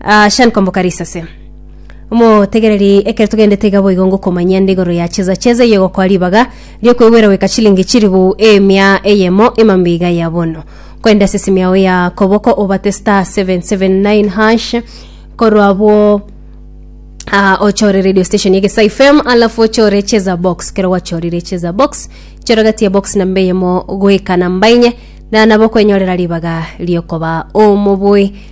Ah, Sean Komboka Risase. Omotegereri ekero togendete iga boigo ngokomanyia nde igoro ya cheza cheza eye gokoa ribaga riokwegwera goika chilingi chiribu emia eyemo emambe iga ya bono. Kwenda ase esimi yao ya koboko obate star 779 hash korwa abwo Ah, ochore radio station ya Gesa FM alafu ochore cheza box kero gwachorire cheza box chora gati ya box namba eyemo goika namba enye na nabo okwenyorera ribaga riokoba omoboi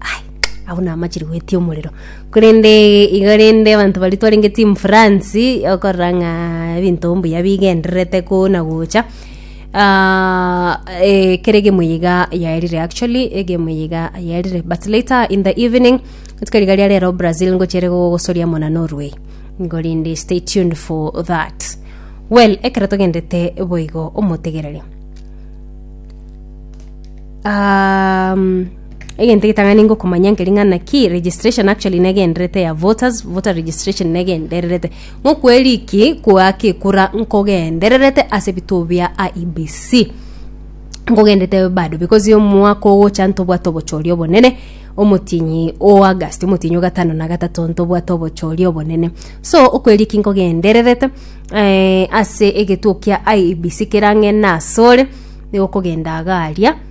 Ai, abwo namachire gwetia omorero korende iga rende abanto baria twarenge team france okorora ng'a ebinto mbuya bigendererete koo na gocha Ah, eh, kera egemo eye iga yaerire actually egemo eye iga yaerire but later in the evening rituko riga ria rero brazil ngochere gogosoria amo na norway nigo rende stay tuned for that well ekero togendete boigo omotegereri um, egento egetang'ani ngokomanya nkeri ng'a naki registration actually negenderete ya voters voter registration negendererete ng'okweriki koaka ekura nkogendererete ase ebituo bia IEBC nkogendete bado because omwaka ogocha ntobwate obochori obonene omotienyi o August omotienyi o gatano na gatato ntobwate obochori obonene so okweriki nkogendererete eh, ase egetuo kia IEBC kerang'e nasore nigo okogenda iga aria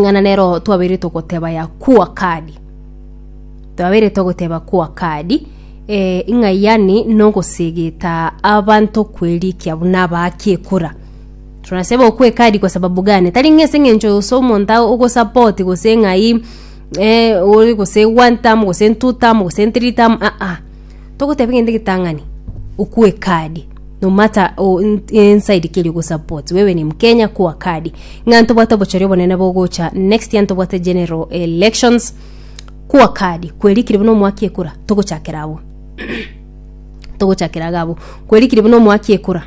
ng'ana nero twabeire togoteba ya kua kadi. Twabeire togoteba kua kadi, eh, ng'a yaani nogosegeta abanto kwerikia buna abaake ekura. Tunasaba okwa ekadi kwa sababu gani? Tari ng'a ase eng'encho ose omonto ago ogosupport gose ng'ai eh, ore gose one term gose two term gose three term aa. togoteba egento egetang'ani okwe kadi no matter o in- inside keri ogosupport wewe ni mkenya kwa kadi ng'a ntobwate obochori obonene bogocha next year ntobwate general elections kwa kadi kwerikire buna omwaka ekura togochakera abwo togochakera iga abwo kwerikire buna omwaka ekura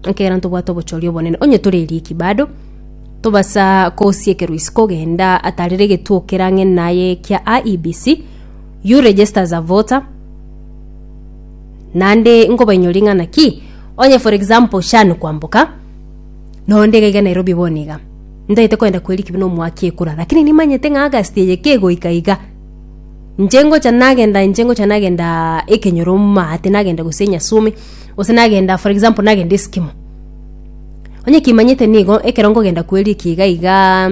ekegera ntobwate obochori obonene onye tore eriki bado tobasa kosiekera isiko genda atarire egetuo kerang'e naye kia IEBC You register as a voter naende nkobainyoria ng'ana ki onye for example sha nikwamboka nonde iga iga nairobi bono iga ntaete koenda kweri kibi na omwaka ekura lakini nimanyete ng'a august eye kegoika iga inche ngocha nagenda inche ngocha nagenda ekenyoro maate nagenda gose nyasume gose nagenda for example nagenda esikimo onye kimanyete nigo ekero nkogenda kweri eke iga igaa.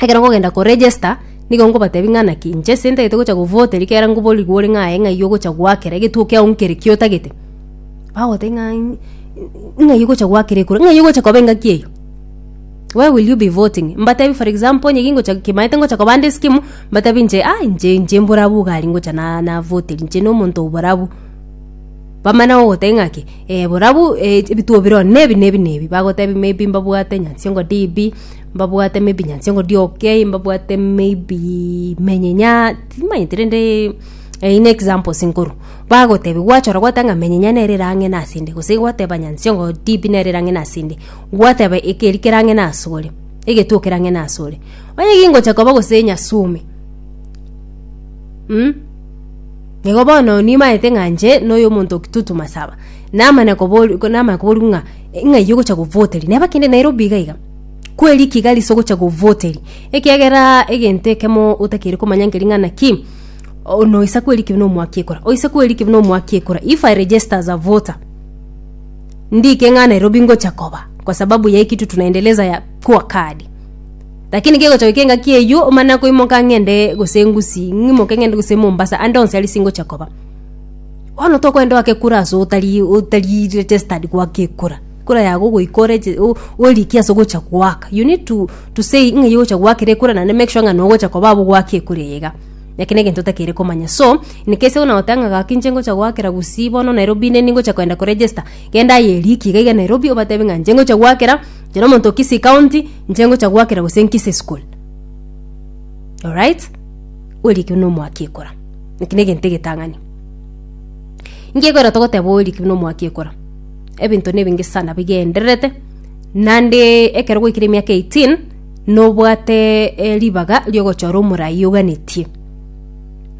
ekero nkogenda ko register nigo nkobatebi ng'a naki inche ase ntagete gocha govote rikera nkoborigwe ore ng'a aye ng'ai ogocha gwakera egetuo kiao nkere ki otagete bagotebi ng'a in- in- ng'ai ogocha gwakera ekura ng'ai ogocha koba engaki eyio where will you be voting mbatebi for example onye gingocha kimaete ngocha kobanda eskimu mbatebi inche ah inche inche mbore abwo iga aria ngocha na navoteria inche na omonto oo bore abwo bamana gogotebi ng'a ki eh bore abwo eh ebituo bire oo nebi nebi nebi bagotebi maybe mbabwate nyansiongo DB. Mbabwate maybe nyansi engodia okay, mbabwate maybe menyinya, timanyeti rende eyio ne examples nkorwa. Bagotebia gwachora gwateba ng'a menyinya nere ere ang'e nase inde, gose gwateba nyansi engo tibi nere ere ang'e nase inde, gwateba ekeri kere ang'e nase ore, egetuo kere ang'e nase ore. Onye gingocha koba gose nyasumi, mh, nigo bono nimanyete ng'a inche na oyo omonto o Kitutu Masaba, namanya kobori namanya koboria ng'a ng'ai ogocha govoteria, neba kende Nairobi iga iga. kwe rikiga riso gocha govoteri ekiagera egento ekemo otakeri komanya nkeri ng'ana ki noisa kwe rikibe nomwaki ekora oisa kwe rikibe nomwaki ekora if i register as a voter ndike ng'a nairobi ngocha koba kwa sababu ya hii kitu tunaendeleza ya kua kadi lakini gegocha goika engaki eywo omana koimoka ng'ende gose ngusi ng'imoke ng'ende gose mombasa ande onsi aria singocha koba bono tokoenda oake kura ase otari otari registered goaka ekura Ekura yago ogoika oreche o- orikia ase ogocha goaka you need to, to say ng'a igocha goakera ekura naende make sure ng'a nogocha koba abwo goaka ekura eye iga eke na egento otakeire komanya so inekese buna goteba ng'a gaki inche ngocha goakera gusii bono nairobi inde ningocha koenda ko register genda aye erikia iga iga nairobi obatebie ng'a inche ngocha goakera kera omonto o kisii county inche ngocha goakera gose nkisii school alright orikia buna omoaki ekura eki na egento egetang'ani inki ekwera togoteba orikia buna omoaki ekura. ebinto nebinge sana bigendererete nande ekero gwaikire emiaka 18 nobwate eh, ribaga riogochora omorai oganetie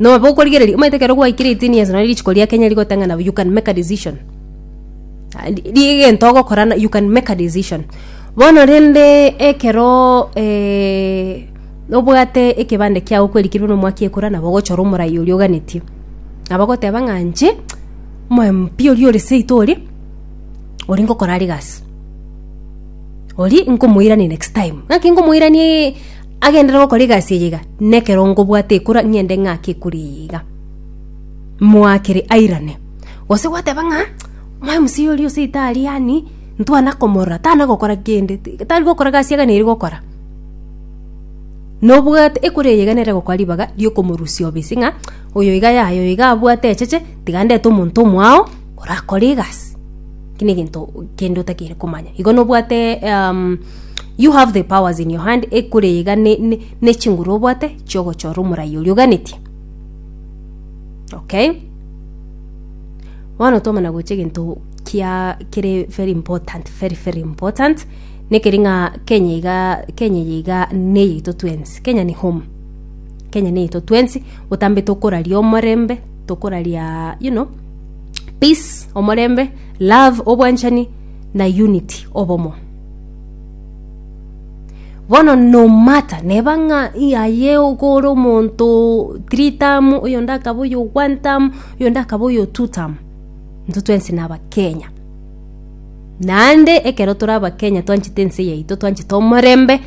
nobe okorigereria omanyete ekero gwaikire 18 years nari richiko ria kenya rigoteng'ana you can make a decision rigento ogokora na- you can make a decision bono rende ekero eh, obwate ekebande kiago kwerikirwe nomwaka ekora nabo ogochora omorai oria oganetie nabo ogoteba ng'a inche Omoyo mpi oria ore seito oria, oria ngokora are egasi. Oria nkomoirania next time. Ng'aki nkomoirania ee, agenderere gokora egasi eye iga, na ekero nkobwate ekura, ng'ende ng'ake ekura eye iga. Moakere airane. Gose gwateba ng'a, omoyo msee oria o seito aria yaani, ntwana komorora, tana gokora kende, ti- tari gokora egasi iga nere gokora. Nobwate ekura eye iga nere egokora ribaga riokomorusia obisi ng'a, oyo iga yaya oyo iga abwate echeche. Tiga ndete omonto omwao orakore egasi, eki negento kende otakeire komanya. Igo nobwate um, you have the powers in your hand ekore iga nechinguru obwate chiogochora omorai oria oganetie okay bono twamana gocha egento kia kere very important very very important nekeri ng'a kenya iga kenya eye iga neyeito twensi kenya ni home kenya neyeito twensi botambe tokoraria omorembe Tokoraria you know, peace, omorembe, love, obwanchani na unity, obomo. Bono no matter neba ng'a yaye okore omonto three term, oyonde akaba oyo one term, oyonde akaba oyo two term, intwe twensi na Abakenya. Naende ekero tore Abakenya twanchete ense yaito, twanchete omorembe.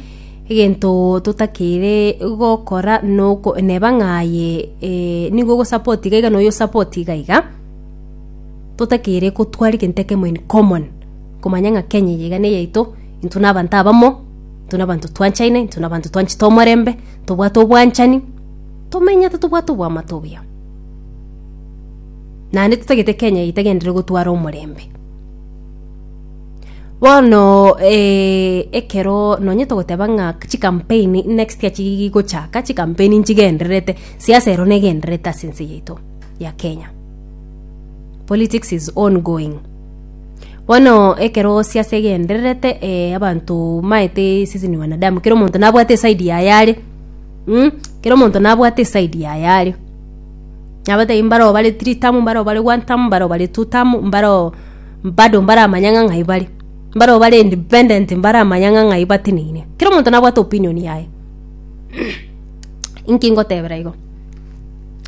Egento totakeire gokora noko neba ng'a aye eh, nigo ogosupport iga iga na oyo osupport iga iga totakeire gotwara egento ekemo in common komanya ng'a kenya eye iga neyaito intwe na abanto abamo intwe na abanto twanchaine intwe na abanto twanchete omorembe tobwate obwanchani tomenyete tobwate oboamate obuya naende totagete kenya eye etagenderere gotwara omorembe Bono ekero nonye togoteba ng'a chikampeni next year chigochaka, chikampeni nchigendererete, siasa ero negendererete ase ense yaito ya Kenya. Politics is on going. Bono ekero siasa egendererete abanto maete sisi ni wanadamu kera omonto nabwate eside yaye are, kera omonto nabwate eside yaye are. Nabatebi mbare obare three term, mbare obare one term, mbare obare two term, mbare. Bado mbaramanya ng'a ng'ai bare. Mbarabwo bare independent mbaramanya ng'a ng'ai bateneine. Kera omonto nabwate opinion yaye. Inki ngotebera igo?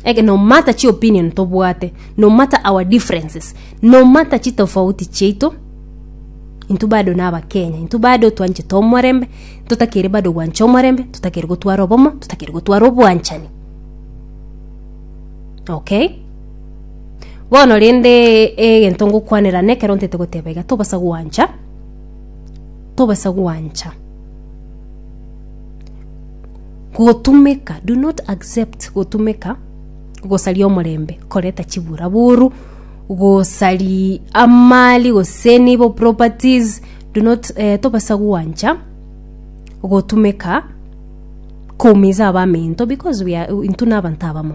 Eke no matter chi opinion tobwate, no matter our differences, no matter chitofauti chiaito, intwe bado naba Kenya, intwe bado twanchete omorembe, totakeri bado gwancha omorembe, totakeri gotwara obomo, totakeri gotwara obwanchani. Okay? Bono rende egento ngokwanera nekero ntete goteba iga, tobasa gwancha, tobasa gwancha gotumeka, do not accept gotumeka gosaria omorembe koreta chiburaboru, gosari amali gose nibo properties, do not tobasa gwancha gotumeka. koumiza abaminto because we are, intwe nabanto abamo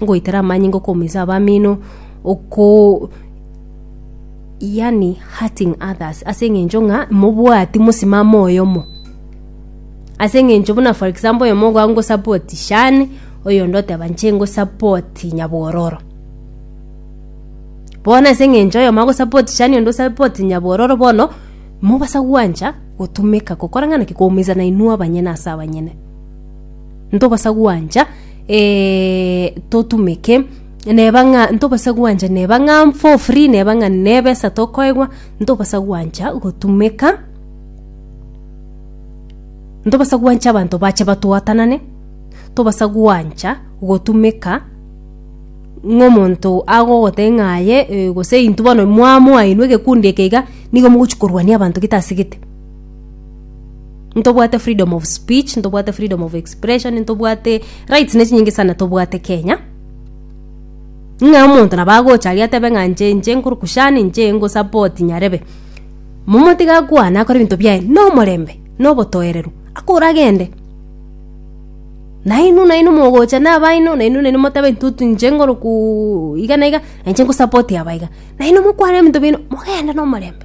ngoitera amanyinga okoumiza abamino oko yani hurting others ase eng'encho ng'a mobwati mosimamo oyomo ase eng'encho buna for example oyomo iga ngosupport Shan oyonde oteba inche ngosupport nyabororo bono ase eng'encho oyomo agosupport Shan oyonde osupport nyabororo bono. Mobasa gwancha gotumeka gokorang'ana ki koumeisana inwe abanyene ase abanyene? Ntobasa gwancha eh, totumeke neba ng'a ntobasa gwancha neba ng'a for free neba ng'a nebesa tokoegwa ntobasa gwancha gotumeka ntobasa gwancha abanto bache batwatanane tobasa gwancha gotumeka Ng'a omonto agogotebia ng'a aye, ee, gose intwe bono mwamoa inwe egekundi eke iga, nigo mogochia korwania abanto getasegete. Ntobwate freedom of speech, ntobwate freedom of expression, ntobwate rights ne chinyinge sana tobwate Kenya, ng'a omonto nabo agocha aria atebe ng'a inche inche nkoruku shani, inche ngosupport Nyarebe. Momo tiga akwane akore ebinto biaye na omorembe, na obotoereru, akoragende. Nainwe, nainwe mogocha nabaino, nainwe, nainwe motabe intwe inche ngoroku iga na iga, na inche ngosapoti aba iga. Nainwe mokwane ebinto biaino, mogende nomorembe.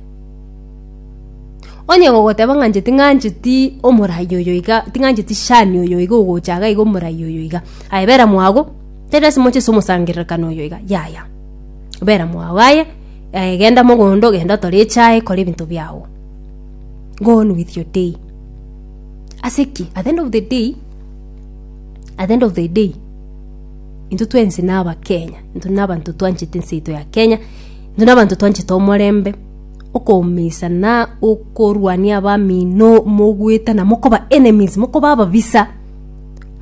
Onye gogoteba ng'a inche ting'ancheti omoraia oyo iga, ting'ancheti shani oyo iga ogocha iga iga omoraia oyo iga, aye bera mwago, tari lasima ochese omosangererekano oyo iga, yaya. Bera mwago aye, aye genda mogondo, genda otore echae, kora ebinto biago. Go on with your day. Ase ki? At the end of the day, at the end of the day, intwe twensi na abakenya, intwe na abanto twanchete ense yaito ya Kenya, intwe na abanto twanchete omorembe, okoumisa na okorwania abamino mogoetana mokoba enemies, mokoba ababisa,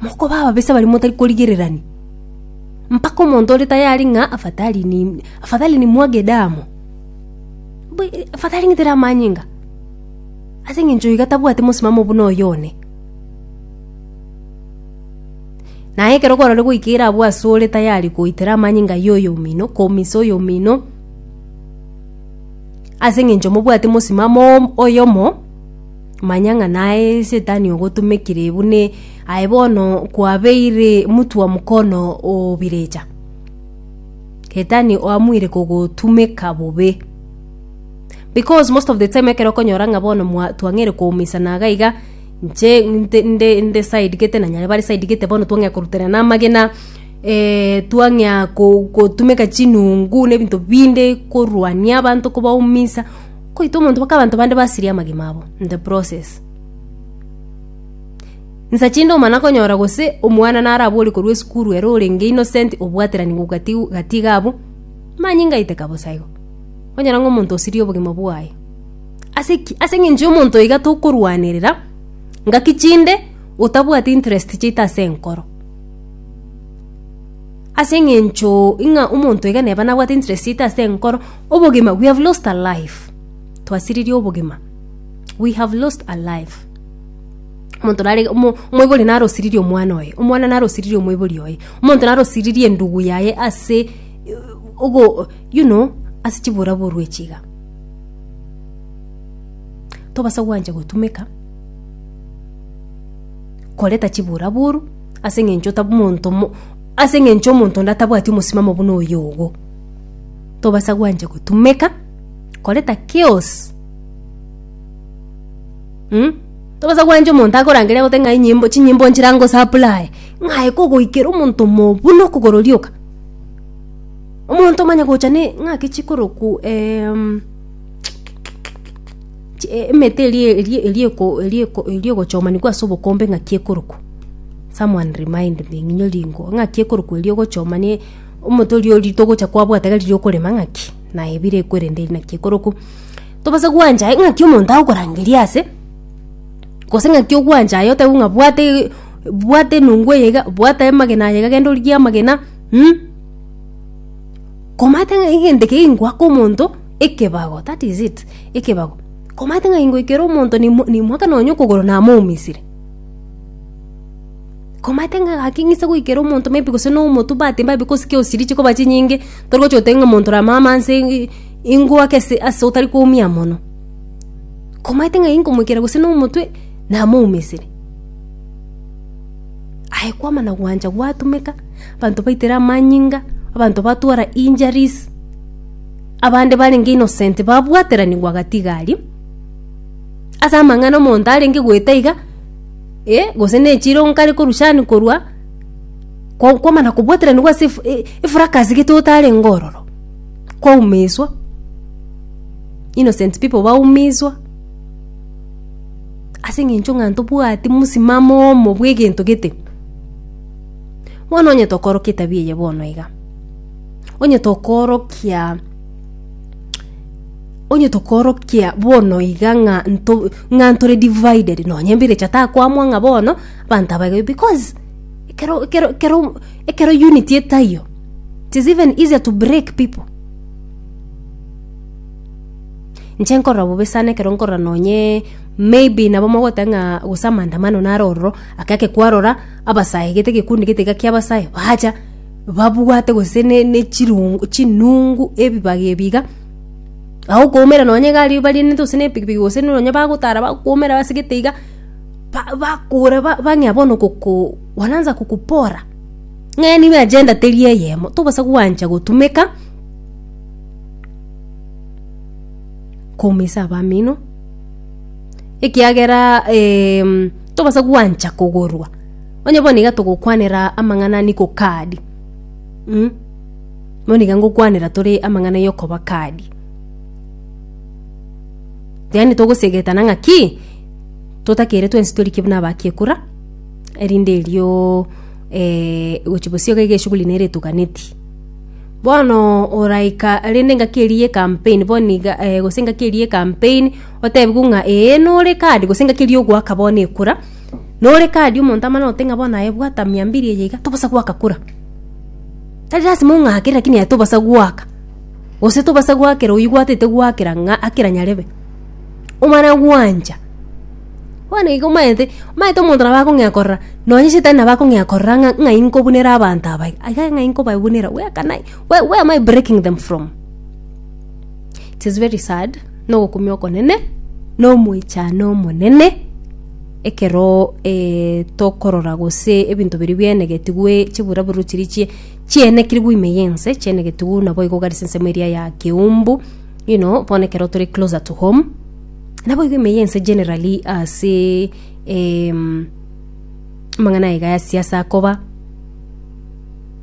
mokoba ababisa baria motari korigererania. Mpaka omonto ore tayari ng'a afadhali ni afadhali nimwage damu, bu- afadhali ng'itera amanyinga. Ase engencho iga tabwati mosimamo buna oyo one. Na ekero korore goika ere abwo asore tayari goitera amanyinga y'oyo omino, komisa oyo omino, ase engencho mobwati mosimamo om- oyomo, manya ng'a naye esetani ogotumekire buna aye bono kwabeire mutwa mokono o birecha. Setani oamoire kogotumeka bobe. Because most of the time ekero okonyora ng'a bono mwa- twang'eire koumisana iga iga, inche nte- nde- nde side gete na nyare bare side gete bono twang'ea koruterana amagena twang'ea ko- kotumeka chinungu na ebinto binde korwania abanto kobaumisa, kwaita omonto mpaka abanto bande basirie amagima abo in the process. Nsa chinde omana konyora gose omwana naro abore korwa esukuru ere orenge innocent obwaterani gokatigu gati iga abwo, manyinga aiteka bosa igo. Onyora ng'a omonto osirie obogima bwaye. Ase ki? Ase eng'encho y'omonto iga tokorwanerera ngaki chinde otabwati interest chiaito ase enkoro. Ase eng'encho ng'a omonto iga neba nabwate interest chiaito ase enkoro, obogima, we have lost a life, twasiririe obogima, we have lost a life. Omonto nare iga omo omoibori nare osiririe omwana oye, omwana nare osiririe omoibori oye, omonto nare osiririe endugu yaye ase ogo. Yuno ase chiboraboru echi iga, tobasa gwancha gotumeka koreta chiboraboru ase eng'encho tab monto mo ase eng'encho omonto onde atabwati omosimamo buna oyo ogo. Tobasa gwancha gotumeka koreta chaos mh? Tobasa gwancha omonto akorangeria agote ng'a enyimbo chinyimbo nchire angosaplae, ng'aye kogoikera omonto omo buna okogoro rioka. Omonto omanye gocha ne ng'ake chikoroku em, chi- e- emete erie- erie- erieko- erieko- eriogochomanigwa ase obokombe ng'aki ekoroku someone remind me ng'inyo ringo ng'aki ekoroku erio ogochoma ne omonto oria ori togocha kwabwata iga riria okorema ng'aki naye bire ekwerende eri naki ekoroku tobasa gwancha aye ng'aki omonto agokorangeria ase gose ng'aki ogwancha aye otebiwe ng'a bwate bwate enungu eye iga bwate amagena aya iga genda origie amagena Komate ng'a egento eke gingwake omonto ekebago, that is it, ekebago. Komate ng'a gingwekere omonto nimo- nimwake nonye okogoro namoumisire. Komate ng'a gaki ng'ise goikera omonto maybe gose na omotwe but maybe gose ki osiri chikoba chinyinge, torigocha goteba ng'a omonto rama amo anse i- ingwake ase ase otari koumia mono. Komate ng'a inkomoikera gose na omotwe, namoumisire. Aye kwama na gwancha gwatumeka, abanto baitera amanyinga, abanto batwara injuries, abande barenge innocent babwateranigwa gatiga aria, ase amang'ana omonto arenge goeta iga, eh, gose nechiro nkare korushani korwa, ko- kwama na kobwateranigwa ase ef- e- efracas gete otarenge ororo, kwaumiswa, innocent people baumiswa. Ase engencho ng'a ntobwati mosimamo omo bw'egento gete. Bono onye tokorokia etabia eye bono iga, onye tokorokia onye tokorokia bono iga ng'a nto ng'a ntore divided nonye embirecha takwamwa ng'a bono abanto aba iga because ekero ekero ekero ekero unity etaiyo it is even easier to break people. Inche nkorora bobe sana ekero nkorora nonye maybe nabo mogoteba ng'a gose amaandamano naro ororo, ake ake kwarora abasae gete egekundi gete iga kia abasae bacha babwate gose ne ne chirungu chinungu ebibaga ebi iga, agokoumera nonye iga aria barianete gose na epikipiki gose nonye bagotara bakoumera ase gete iga, ba bakora ba bang'ea bono goko wananza kukupora ng'a nigo agenda teri eyemo, tobasa gwancha gotumeka. koumeisa abamino ekiagera em, tobasa gwancha kogorwa onye bono iga togokwanera amang'ana niko kadi mm? bono iga ngokwanera tore amang'ana yokoba kadi yaani togosegetana ng'a ki totakere twensi torike buna abakiekura erinde erio eh, gochi bosio iga eshughuli nere etoganeti. Bono oraika rende engaki eria y'ekampeni, bono iga, eh, gose engaki eria y'ekampeni, otebigwe ng'a ee nore kadi gose engaki eria y'ogoaka bono ekura, nore kadi omonto amana gote ng'a bono aye bwata mia mbiri eye iga, tobosa goaka kura. Tari lasima ong'ake lakini aye tobosa goaka, gose tobosa goakera oyio gwatete goakera ng'a akera nyarebe. omana gwancha. Bono igo omanyete, omanyete omonto nabo akong'ea korora, nonye shetani nabo akong'ea korora ng'a ng'ai nkobunera abanto aba iga, aiga ng'ai nkobabunera, where can I, where, where am I breaking them from? It is very sad, na ogokumia okonene, na omoichano omonene, ekero eh, tokorora gose ebinto biria biaenegetigwe chiburaburo chiria chie, chiaenekirigwe ime yense, chiaenegetigwe naboigo gari ase ensemo eria ya keumbu. You know, bono ekero tore closer to home, naboigo ime ya ense generally ase em, amang'ana aye iga ya siasa akoba,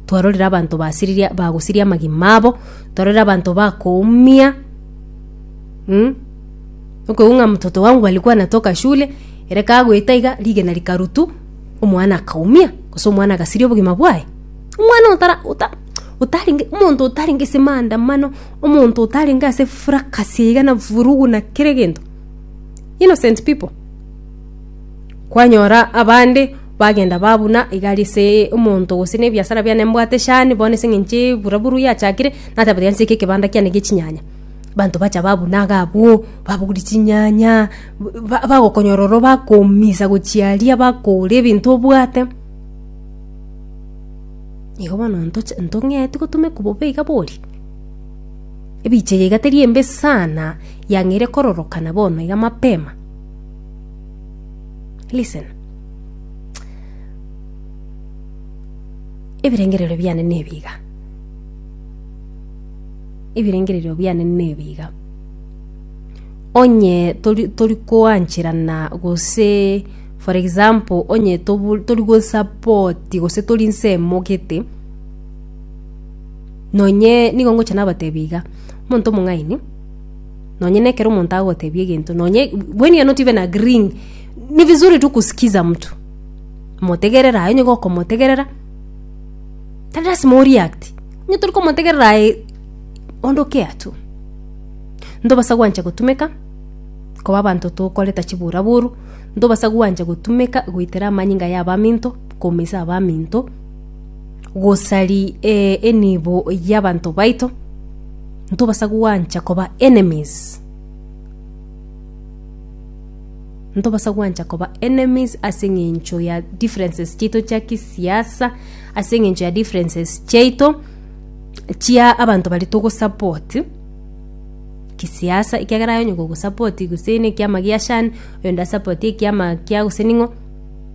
twarorire abanto basiriria bagosiria amagima abo, twarorire abanto bakoumia mm, okoigwa ng'a mtoto wangu alikuwa anatoka shule, ere kagoeta iga, rigena rikarutu, omwana akaumia, gose omwana agasiria obogima bwaye, omwana otara ota otarenge omonto otarenge ase maandamano. Omonto otarenge ase fracas iga na vurugu na kera egento. Innocent people. Kwanyora abande bagenda babuna igari ase omonto gose na ebiasara biane mbwate shani bono ase eng'enche bura buru yachakire nateba tiga nse ekebanda kiane gie chinyanya. Banto bacha babuna iga abwo, babori chinyanya, ba bagokonyora ororo bakoumisa gochia aria bakore ebinto obwate. Igo bono ntoche ntong'ee tigo tomekobobe iga boria. Ebiche yaiga teri embe sana yang'eire kororokana bono iga mapema. Listen. Ebirengererio biane nebi iga, ebirengererio biane nebi iga, onye tori tori koancherana gose for example onye tobu tori gosapoti gose tori nse emogete. Nonye nigo ngocha nabateebie iga, omonto omong'aini, nonye na ekero omonto agoteebia egento, nonye when you're not even agreeing, ni vizuri tu kusikiza mtu, motegerere aye nigo okomotegerera, tari lasima o react, onye tori komotegerera aye onde o care tu. Ntobasa gwancha gotumeka koba abanto tokoreta chiburaburu, ntobasa gwancha gotumeka goitera amanyinga ya abaminto, koumisa abaminto. gosari eh, enibo y'abanto baito, ntobasa gwancha koba enemies. Ntobasa gwancha koba enemies ase eng'encho ya differences chiaito chia kisiasa, ase eng'encho ya differences chiaito chia abanto baria togosupport kisiasa, ekiagera aye onye gogosupport gose nekiama gia shan, oyonde asupport ekiama kia gose ning'o.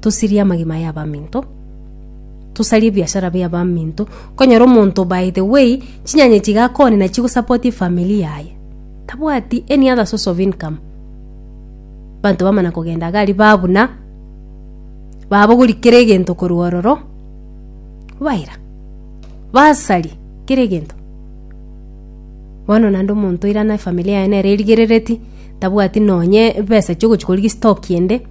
tosirie amagima ya abaminto tosarie ebiashara bia abaminto konyora omonto by the way chinyanya chigakonina chigosapoti efamili yaye tabwati any other source of income banto bamana kogenda iga aria babuna babogori kera egento korwa ororo baira basari kera egento bono naende omonto oira na efamili yaye nere erigerereti tabwati nonye ebesa chiogochia korigia estock ende.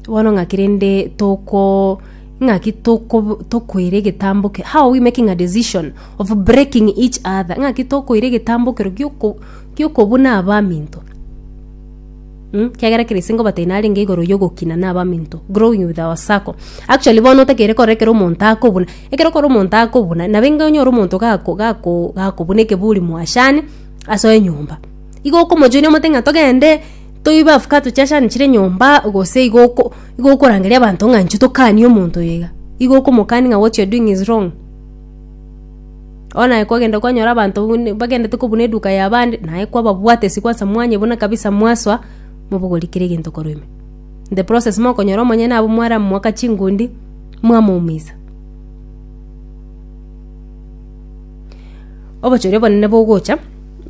Bono ng'aki rende toko ng'aki toko tokoira egetambo ke how we making a decision of breaking each other ng'aki tokoira egetambo ekero gioko giokobuna abaminto ekiagera kera ase ngobatebia narenge igoro ya ogokina na abaminto growing with our circle. Actually bono otakeire korora ekero omonto akobuna, ekero okora omonto akobuna nabo inga onyore omonto gako gako gakobuna ekeburi mwachane ase enyomba. Igo okomochoinia omote ng'a togende. Toibafuka tochachanechire nyomba gose igo oko- igo okorangeria abanto ng'a inche tokanie omonto oyo iga. Igo okomokania ng'a what you're doing is wrong. Bono aye kwagenda kwanyora abanto buna bagendete kobuna eduka ya abande, naye kwababwate ase kwansa mwanye buna kabisa mwasoa, mobogori kera egento korwa ime. In the process mokonyora omonyene abwo mwaramoaka chingundi, mwamoumisa. Obochori obonene bogocha,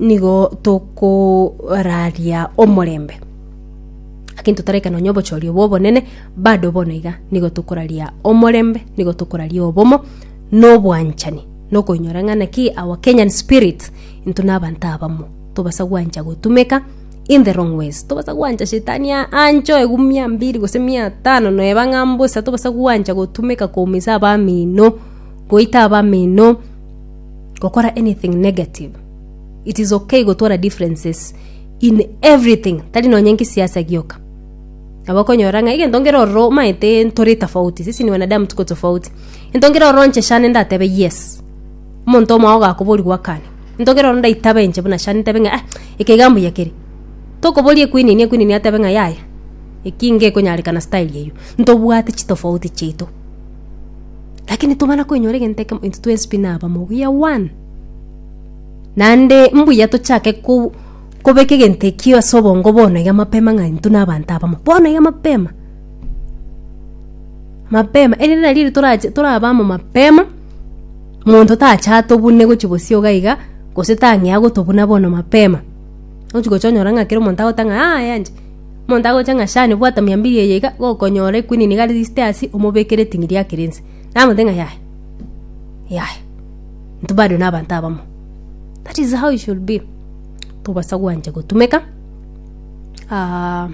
nigo tokoraria omorembe. Lakini totaraika nonya obochori obwo obonene, bado bono iga nigo tokoraria omorembe, nigo tokoraria obomo, na obwanchani, na okoinyora ng'a naki our Kenyan spirit intwe na abanto abamo, tobasa gwancha gotumeka in the wrong ways. Tobasa gwancha shetani a- anchoo egu mia mbiri gose mia tano, noeba ng'a mbosa, tobasa gwancha gotumeka koumisaa abamino. Goita abamino, gokora anything negative. It is okay gotwara differences in everything, tari nonye nkesiasa gioka. Nabo okonyora ng'a egento nkere ororo omaete ntore tofauti, sisi ni wanadamu tuko tofauti. Gento nkere ororo nche shane ndatebe yes, omonto omwao ogakoboria gwakane. Gento nkere ororo ndaitabe nche buna shane ntebe ng'a ah, eke iga mbuya kere. Tokoboria ekwinini, ekwinini atebe ng'a yaya, eki iga ekonyarekana style eyio. Ntobwate chitofauti chiaito. Lakini ntitobana koinyora egento ekemo, intwe twensi pi nabamo buya one. Naende mbuya tochake ko- kobeka egento ekio ase obongo bono iga mapema ng'a intwe na abanto abamo, bono iga mapema, mapema erinde nari eri torache toraba amo mapema, monto tacha atobune gochia bosio iga iga, gose tang'ea gotobuna bono mapema. Ogochi gocha onyora ng'a kera omonto agoteba ng'a aa aye anche. Omonto agocha ng'a, Shani, bwata miambili eye iga, gokonyora ekwini niga riste ase, omobeke riting'i riake rinse. Namote ng'a, Yaya, yaya, intwe bado nabanto abamo. That is how it should be. Tobasa gwancha gotumeka, ah,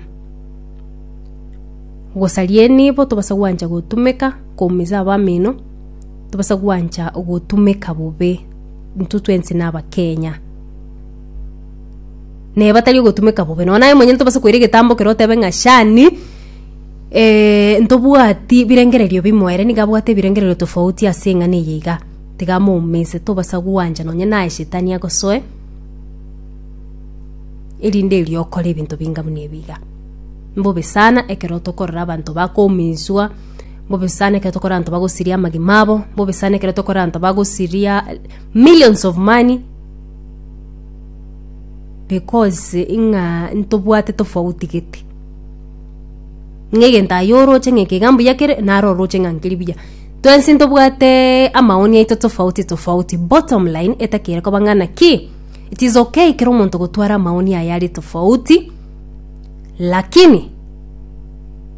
gosaria enibo, tobasa gwancha gotumeka, koumiza abamino, tobasa gwancha gotumeka bobe, intwe twensi nabakenya. Neba tari ogotumeka bobe. Nonya naye monyene tobase koira egetambo ekero otebe ng'a shani, eh, ntobwati birengererio bimo, ere nigo abwate ebirengererio tofauti ase eng'ana eye iga, tiga amoumise, tobasa gwancha nonya naye shetani agosoe, erinde erio okore ebinto binga buna ebi iga. Mbobe sana ekero tokorora abanto bakoumiswa, mbobe sana ekero tokorora abanto bagosiria amagima abo, mbobe sana ekero tokorora abanto bagosiria millions of money. Because ng'a ntobwate tofauti gete. Ng'a egento aye oroche ng'a eke iga mbuya kere, naro oroche ng'a nkeri buya. Twensi ntobwate amaoni aito tofauti tofauti. Bottom line, etaki ere koba ng'a naki, it is okay kera omonto gotwara amaoni aye are tofauti, lakini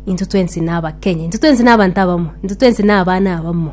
intwe twensi na Abakenya, intwe twensi na abanto abamo, intwe twensi na abana abamo.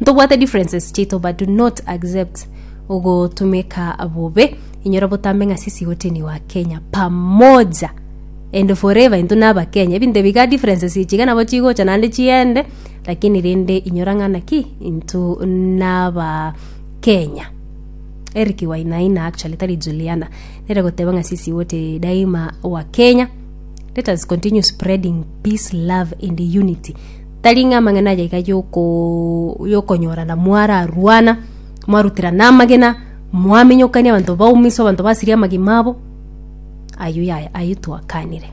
Ntobwate differences chiaito but do not accept ogotumeka bobe inyora botambe ng'a sisi wote ni wa Kenya pamoja and forever into naba Kenya ebinto ebi iga differences echi iga nabo chigocha naende chiende lakini rende inyora ng'a naki into naba Kenya Eric Wainaina actually tari Juliana nere goteba ng'a sisi wote daima wa Kenya let us continue spreading peace love and unity Tari ng'a amang'ana aya iga yokonyorana mwararwana, mwaruterana amagena, mwaminyokania abanto baumiswa, abanto basiria amagima abo, ayio yaya ayio twakanire.